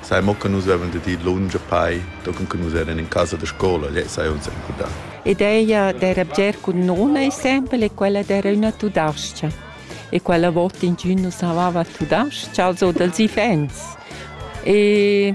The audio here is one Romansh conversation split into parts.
Sai mo che nus vevan dad ir lunsch a pei, tochen che nus eran in casa da scola, lei sai uns encudar. Ideia d'era bger cun nona exempel e quella d'era üna tudascha. E quella vota ingün nus havava tudascha, also dals ifens. E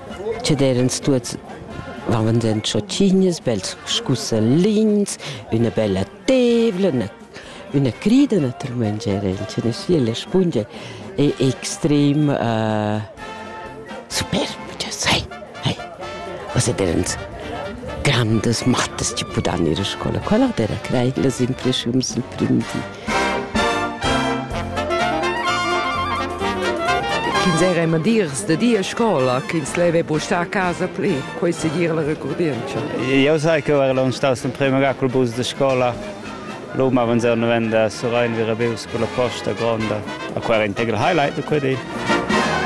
Che d'eirans tuots varvandent chotschignas, bels scussalins, üna bella tevla, üna üna crida natüralmaing eran sia la spungia è extrem superba, cha sai, hai. Uossa d'eirans grandas mattas chi pudan ir a scoula. Quella d'eira crei las impreschiums del prim di. Ch'ins era madirs da dir scola, ch'ins leva buca star a casa pli, quei segir la recurdientscha. Eu sai che era l'on staus il primo gacul bus de scola. L'um avanzau novenda Surain Virabeus con la posta gronda, a quella integral highlight de quei di.